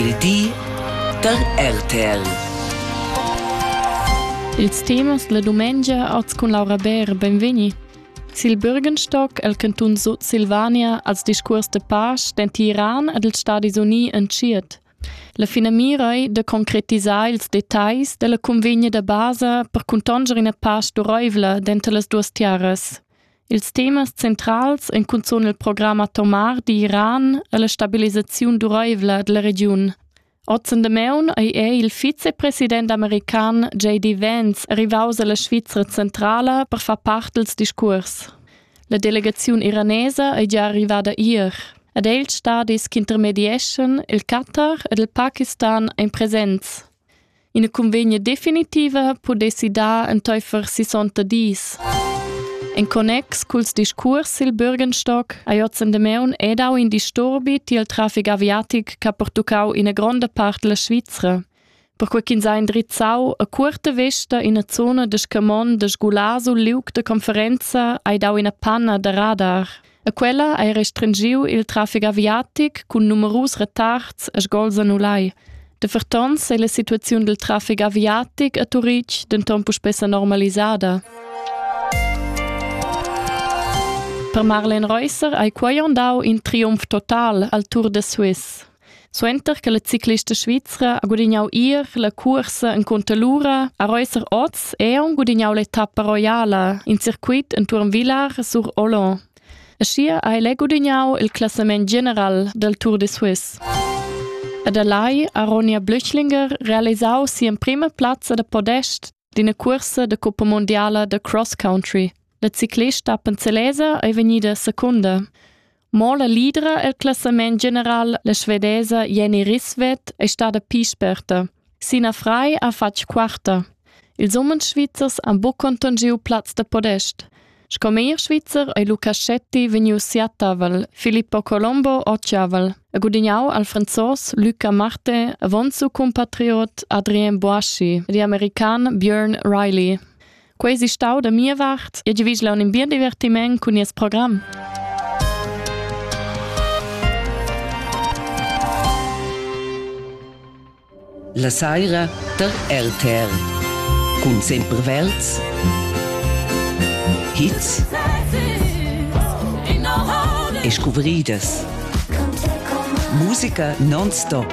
Il di da RTL. Ils temas la dumengia als cun Laura Bär, benvegni. Sil Bürgenstock el cantun Sud Silvania als discurs de pace den Tiran ed ils Stadis Unii entschiet. La finamira è de concretisar ils detalls della convegna da basa per contanger ina pace duroivla dentro las duas terras. Ils temas centrals ein cunzun il program atomar d'Iran e la stabilisaziun duraivla dalla regiun. Ozen Demaun ei è il vicepresident american JD Vance rivaus alla Svizra centrala per far part dils discuors. La delegaziun iranesa ei gia arrivada ier ed ei ils stadis ch'intermedieschan il Qatar ed il Pakistan ein presents. Ina cunvegna definitiva pudessi dar entaifer sissonta dis. En connex culs discuors sil Bürgenstock hai ozen Demaun e dau in disturbi tiel trafic aviatic ch'ha pertuccau ina gronda part della Svizra. Perquei ch'ins ha indrizzau a cuorta vesta ina zona de scamon de sgular sul liug de conferenza hai dau ina panna da radar. E quella ha restringiu il traffic aviatic cun numerus retards e sgols annulai. De fertons ei la situaziun dil traffic aviatic a Turitg denton puspè normalisada. Per Marlen Reusser hai quai dau in triumf total al Tour de Suisse. Suenter che la ciclista svizra ha gudignau ier la cursa encunter l'ura a Reusser oz è aunc gudignau l'etappa roiala in circuit entuorn Vilar sur Olon. Aschia ha el è gudignau il classament general del Tour de Suisse. Ed allai ha Ronja Blüchlinger realisau sia prima plazza da podest d'ina cursa de Coppa Mondiala de Cross Country. La ciclista Panzelese è vegnida secunda. Mo la lidra el classament general, la svedesa Jenny Risvet, è stada pi sperta. Sina Frei ha fatg quarta. Ils umens svizzers han buc conton giu plaz da podest. Sco meglier svizzer ei Lucaschetti vegnius siatavel, Filippo Colombo occiavel, e gudignau al franzos Luca Marte, avonzu compatriot Adrien Boaschi e di american Björn Riley. Quei si stau da mia vart e giavigl un in bien divertiment cun nies program. La saira der LTR cun sempre Welz Hits e scuvridas Musica non-stop